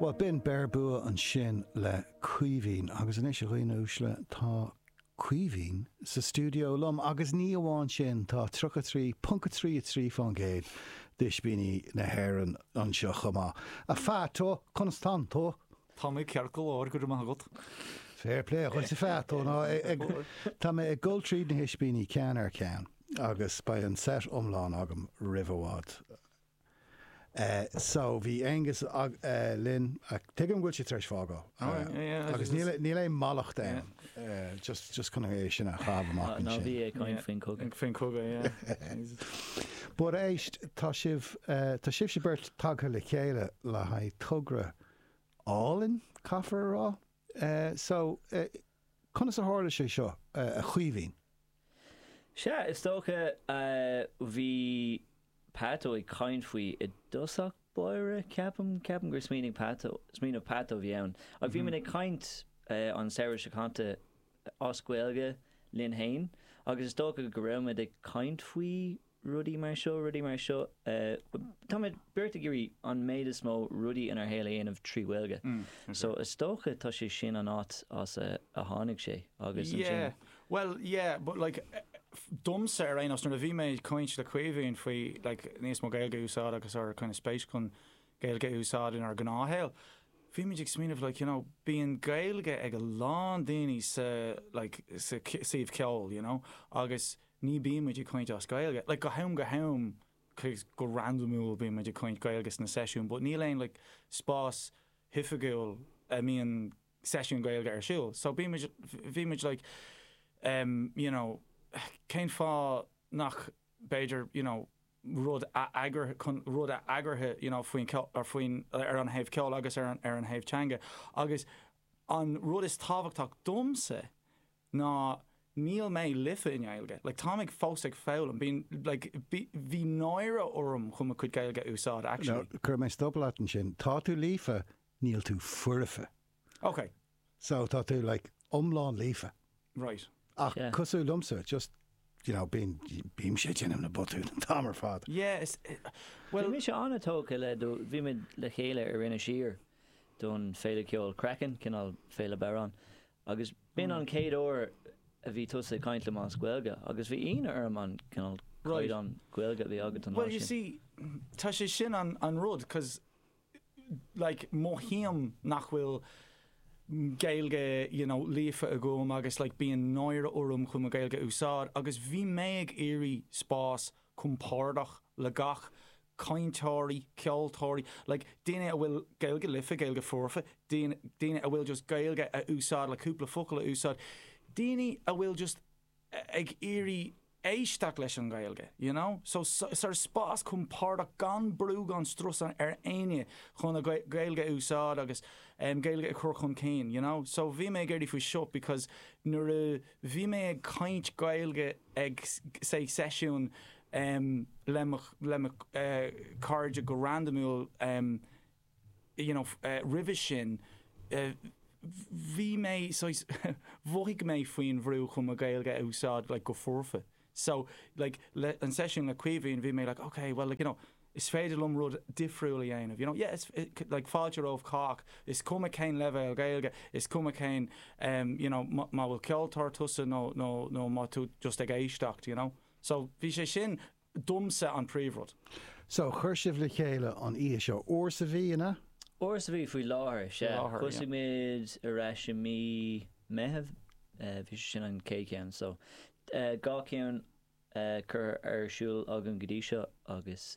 Bhuel, b'in Beir Bua ansin le Caoimhín. Agus anois, a dhaoine uaisle, tá Caoimhín sa stiúideo liom. Agus ní amháin sin, tá 33.33% d'Oispíní na hÉireann anseo chomh maith. A Pheaito, conas tánn tú? Tá mé ceart go leor, go raibh maith agat. Fair play dhuit, a Pheaito. Now, tá mé ag dul tríd na hOispíní ceann ar cheann agus beidh an set iomlán agam roimh i bhfad. so bhí Aonghus linn, tuigim go bhfuil sé tar éis fágáil agus níl aon mallacht ann, just just chun é sin a chaitheamh amach ansin. Ná bí ag caint faoin gcogadh. Faoin gcogadh, yeah. But éist, tá sibh, tá sibhse beirt tagtha le chéile le haghaidh togra álainn, caithfear a rá? Eh, so, eh, conas a tharla sé seo, eh, a Chaoimhín? Sea, is dócha, eh, bhí Peaito ag caint faoi i dtosach báire, ceapaim, ceapaim gur smaoinigh Peaito, smaoineamh Peaito a bhí ann. Ach bhí muid ag caint, eh, an samhradh seo caite as Gaeilge linn fhéin agus is dócha go raibh muid ag caint faoi, rudaí mar seo, rudaí mar seo. Táimid beirt ag iarraidh an méid is mó rudaí inár shaol a dhéanamh trí Ghaeilge. So is dócha tá sé sin an áit as a tháinig sé agus ansin. Yeah, well, yeah, but like, domsa ar aon nós, nuair a bhí mé ag caint le Caoimhín faoi like níos mó Gaeilge a úsáid agus ár kind of spéis chun Gaeilge a úsáid inár ngnáthshaol, bhímid ag smaoineamh like, you know, bíonn Gaeilge ag a lán daoine sa like sa suíomh ceoil, you know, agus Ní bíonn muid ag caint as Gaeilge, like, go ham go ham, like, go randamúil bíonn muid ag caint Gaeilge sna seisiúin, but níl aon, like, spás oifigiúil a mbíonn seisiún Gaeilge ar siúl. So bíonn muid, bhí muid, like, um, you know, cén fáth nach, b'fhéidir, you know, rud a eagr, chun rud a eagrú, you know, faoin ceol, or faoin, ar an thaobh ceoil agus ar an, ar an thaobh teanga. Agus an rud is tábhachtach domsa ná níl mé líofa i nGaeilge, like táim ag fós ag foghlaim, bíonn, like bhí, bhí náire orm chun mo chuid Gaeilge a úsáid, actually. Now, cuirfidh mé stop leat ansin. Tá tú líofa, níl tú foirfe. Ok. So, tá tú, like, iomlán líofa. Right. Ach Yeah. cosúil liomsa, just, you know, bíonn, bímse ag déanamh na botúin an t-am ar fad. Yeah, is, eh, Bhí well, mise an-tógtha le do, bhímid le chéile ar Inis Oírr don Féile Ceoil Craiceann, cineál Féile Bodhrán, Agus b'in an chéad uair a bhí tusa ag caint liom as Gaeilge, agus bhí ionadh orm an cineál caighdeán Gaeilge a bhí agat an lá sin. Bhuel, you see, tá sé sin an rud, cos, like, mothaím nach bhfuil Gaeilge, you know, líofa agam agus, like, bíonn náire orm chun mo Ghaeilge a úsáid, agus bhí mé ag iarraidh spás compordach le gach cainteoirí, ceoltóirí, like daoine a bhfuil Gaeilge liofa, Gaeilge foirfe, daoine a bhfuil just Gaeilge a úsáid le cúpla focal a úsáid, daoine a bhfuil just ag iarraidh éisteacht leis an nGaeilge, you know. So sort of spás compordach gan brú gan strus ar éinne chun a Gaeilge a úsáid agus Gaeilge a chur chun cinn, you know. So bhí mé ag iarraidh faoi seo because nuair a bhí mé ag caint Gaeilge ag say seisiúin em. le mo, le mo, eh. cairde go randamúil, em. you know, eh. roimhe sin, eh. bhí mé, saghas, mhothaigh mé faoin bhrú chun mo Ghaeilge a úsáid like go foirfe. So, like, le, an seisiún le Caoimhín, bhí mé like, okay, well, like, you know, is féidir liom rud difriúil a dhéanamh, you know. Yeah, is, like, fáilte roimh chách, is cuma cén leibhéal Gaeilge, is cuma cén, em, you know, má bhfuil ceoltóir tusa nó, nó, nó má tú just ag éisteacht, you know. So, bhí sé sin, domsa, an príomhrud. So, chuir sibh le chéile an oíche seo. Uair sa mhí, an ea? Uair sa mhí, faoi láthair, sea. Thosaigh muid ar ais i mí Meithimh, bhí sé sin an chéad cheann. So, dhá cheann curtha ar siúl againn go dtí seo agus.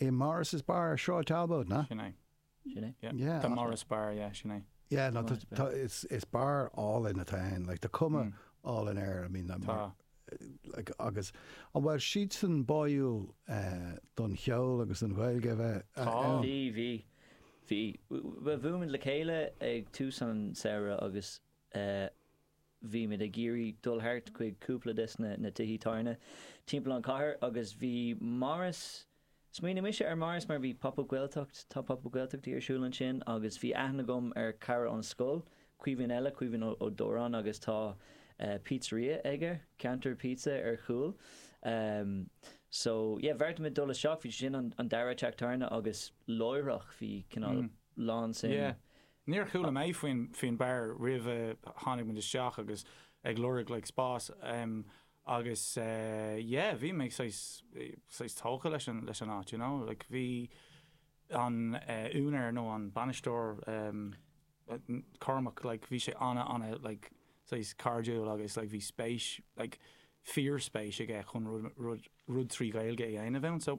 i Morris's Bar, Sráid Talbot, na? Sin é. Sin é. Yeah. Yeah. The Morris Bar, yeah, sin é. Yeah, no, Morris Bar. it's, it's bar álainn atá ann, like, tá cuma Mm. álainn air, I mean, I'm- Tá. like, agus, an bhfuil siadsan báúil eh, don cheol agus don Ghaeilge a bheith a- Tá. ann? Bhí, bhí, bhí. Bh- Bhuail muid le chéile ag tús an samhradh agus eh, bhí muid ag iarraidh dul thart chuig cúpla des na tithe tábhairne timpeall an chathair agus bhí Morris, smaoinigh mise ar Morris mar bhí Pop Up Gaeltacht, tá Pop Up Gaeltachtaí ar siúl ansin agus bhí aithne agam ar chara ón scoil, Caoimhín eile, Caoimhín Ó Dóráin agus tá pizzeria aige, Ceantar Pizza ar chúl ehm so yeah bheartaigh muid dul isteach, bhí sé sin an dara teach tábhairne agus láithreach bhí cineál lán suim Níor chuala mé faoin bar roimh a tháinig muid isteach agus ag lorg like spás em agus eh yeah bhí mé saghas, saghas tógtha leis an, leis an áit you know like bhí an eh úinéir nó an bainisteoir em Cormac like bhí sé ana, ana like saghas cairdiúil agus like bhí spéis like fíor spéis aige chun rud, rud, rud trí Ghaeilge a dhéanamh ann so,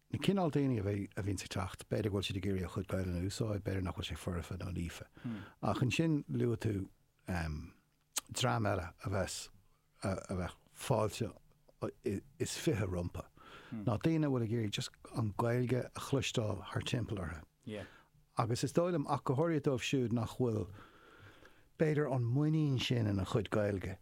Na cineál daoine a bhíonns ag teacht, b'fhéidir go bhfuil siad ag iarraidh a chuid Gaelainne a úsáid, b'fhéidir nach bhfuil sé foirfe nó líofa. Ach ansin luaigh tú dream eile a bheas, a bheadh fáilte is fiche rompu, ná daoine a bhfuil ag iarraidh just an Ghaeilge a chloisteáil thart timpeall orthu. agus is dóigh liom, ach go háirithe dóibh siúd nach bhfuil, b'fhéidir, an muinín sin ina chuid Gaeilge,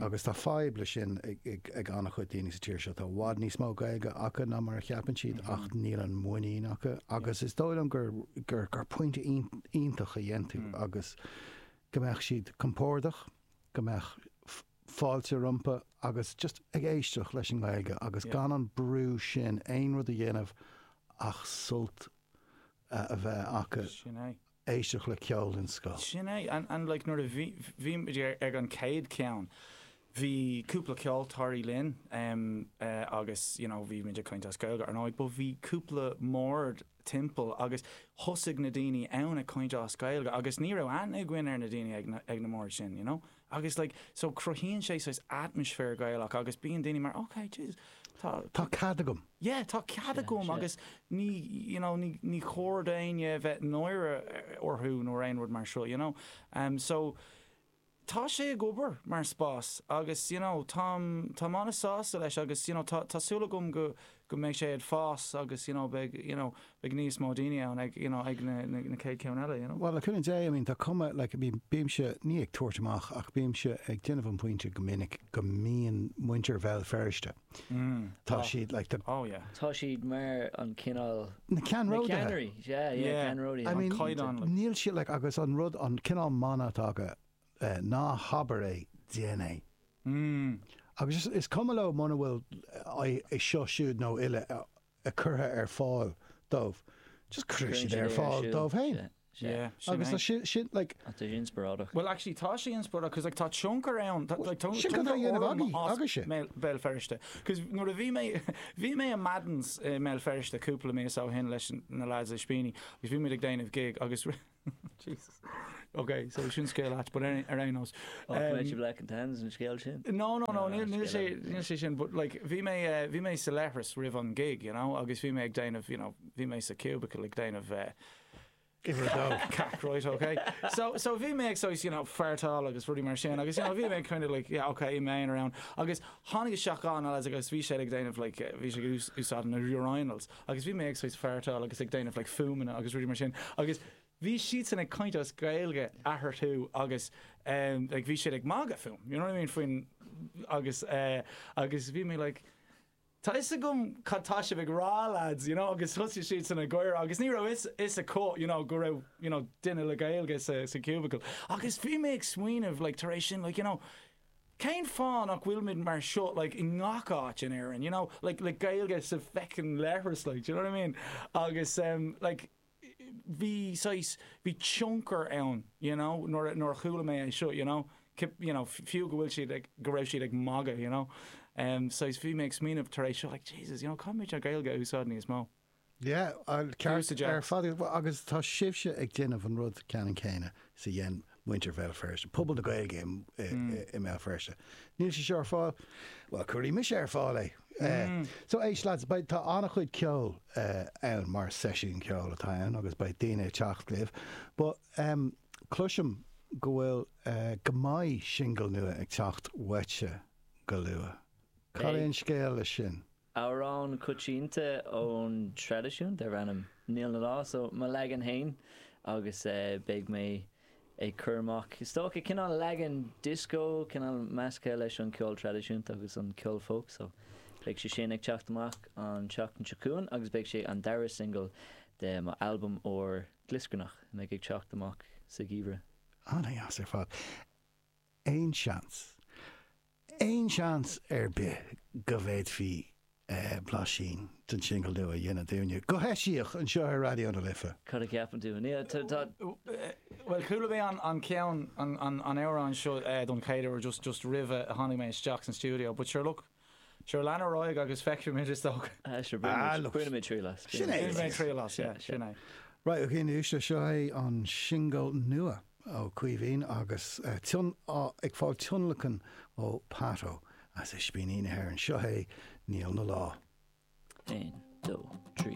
agus tá fadhb leis sin ag an-chuid daoine sa tír seo, tá i bhfad níos mó Gaeilge acu ná mar a cheapann siad, ach níl an muinín acu, agus is dóigh liom gur point iontach a dhein tú, agus go mbeadh siad compordach, go mbeadh fáilte rompu, agus just ag éisteacht leis an nGaeilge agus gan an brú sin aon rud a dhéanamh ach sult a a bheith acu éisteacht le ceol den scoth. Sin é. And like, nuair a bhí, bhí muid ar, ag an chéad cheann, bhí cúpla ceoltóirí linn em eh agus you know bhí muid ag caint as Gaeilge ar ndóigh but bhí cúpla mbord timpeall agus thosaigh na daoine ann ag caint as Gaeilge agus ní raibh aithne againn ar na daoine ag na, ag na mbord sin you know. Agus like so cruthaíonn sé saghas atmaisféar Gaelach agus bíonn daoine mar ok Jesus tá Tá cead agam. yeah tá cead Sea, agam sea. agus ní you know ní ní chóir d'éinne a bheith náire orthu nó aon rud mar seo you know. Em so tá sé ag obair mar spás agus you know táim táim an-sásta leis agus you know tá tá súil agam go go mbeidh sé ag fás agus you know beidh you know beidh níos mó daoine ann ag you know ag na na chéad cheann eile you know. Bhuel, le cúnamh Dé, I mean tá cuma like I mean bímse, ní ag tabhairt amach ach bímse ag déanamh an pointe go minic go mbíonn muintir Bhéal Feirste, tá siad like the, oh yeah. tá siad mar an cineál, na ceannródaithe, yeah yeah ceannródaithe, an caighdeán, níl siad like agus an rud an cineál mana atá acu, Ná habair é, déan é. Agus is is cuma leo muna bhfuil é seo siúd nó uile curtha ar fáil dóibh, just cuireann siad é ar fáil dóibh féin. Agus tá sin, sin, like. Ach tá sé inspioráideach. Bhuel, actually, tá sé inspioráideach, 'cause like tá tionchar ann, tá, like, tionchar. Sin cad a dhéanamh agaibh, agaibhse. Mail, Bhéal Feirste. 'Cause nuair a bhí mé, bhí mé i Madden's i mBéal Feirste cúpla mí ó shin leis na lads i Spíní, agus bhí muid ag déanamh gig agus rinne, Jesus. Ok, so sin scéal ait, but ar aon nós. Ní hé black and tans an scéal sin? No, no, no, ah, níl sé, níl sé sin, but like, bhí mé, eh, bhí mé sa leithris roimh an gig, you know, agus bhí mé ag déanamh, you know, bhí mé sa cubicle ag déanamh eh, Give her a go. Cac, right, okay. So, so bhí mé ag so, you know, fartáil agus rudí mar sin, agus you know, bhí mé kind of like, yeah, okay, main around. Agus tháinig a seachán agus bhí sé ag déanamh, like, bhí sé ag úsáid na urinals. agus bhí mé ag saghas fartáil agus ag déanamh like fuaimeanna agus rudaí mar sin agus bhí siadsan ag caint as Gaeilge eathorthu agus em like bhí siad ag magadh fúm you know what I mean faoin agus eh agus bhí mé like tá fhios agam cad tá sibh ag rá lads you know agus thosaigh siadsan ag gáire agus ní raibh fhios fhios acu you know go raibh you know duine le Gaeilge sa sa cubicle agus bhí mé ag smaoineamh like tar éis sin like you know Cén fáth nach bhfuilimid mar seo like i ngach áit in Éirinn, you know, like like Gaeilge sa bhfeckin' leithreas like, d'you know what I mean? Agus em like bhí saghas, bhí tionchar ann d'you know nuair a, nuair a chuala mé é seo d'you know, you know fiú go bhfuil siad ag, go raibh siad ag magadh d'you know, em saghas bhí mé ag smaoineamh tar éis seo like Jesus you know caithfimid an Ghaeilge a úsáid níos mó. Yeah, ceart ar fad agus tá sibhse ag déanamh an rud ceanann céanna is a dhein muintir Bhéal Feirste, pobal na Gaeilge i mBéal Feirste. Níl sé seo ar fáil? Well, cuirfidh mise ar fáil é. So éist beidh, tá an-chuid ceoil ann mar seisiún ceoil atá ann agus beidh daoine ag teacht libh but cloisim go bhfuil, go mbeidh singil nua ag teacht uaitse go luath. Cad é an scéal leis sin? Amhrán coitianta ón traidisiún darb ainm 'Níl 'na Lá', so, mo leagan fhéin agus beidh mé ag cur amach is dócha cineál leagan dioscó, cineál measctha leis an ceol traidisiúnta agus an ceol folk, so, beidh sé sin ag teacht amach an tseachtain seo chugainn agus beidh sé an dara singil de mo albam úr glioscarnach a mbeidh ag teacht amach sa gheimhreadh. Ana dheas ar fad. Aon seans, aon seans ar bith go bhféadfaí blaisín den singil nua a dhéanamh dúinne, go heisiach, anseo ar Raidió na Life? Cad a cheapann tú? Bhuel, chuala mé an ceann, an amhrán seo don chéad uair just roimh a tháinig mé isteach san stiúideo but sure look, Sure, lean ar aghaidh agus feicfimid, is dócha. Ah, sure, bainimid triail as. Sin é. Bainimid triail as, yeah, sin é. Right, ok, anois, seo é an singil nua ó Caoimhín agus ag fáil tionlacan ó Pato as Ispíní na hÉireann. Seo é Níl 'na lá. Aon, dó, trí.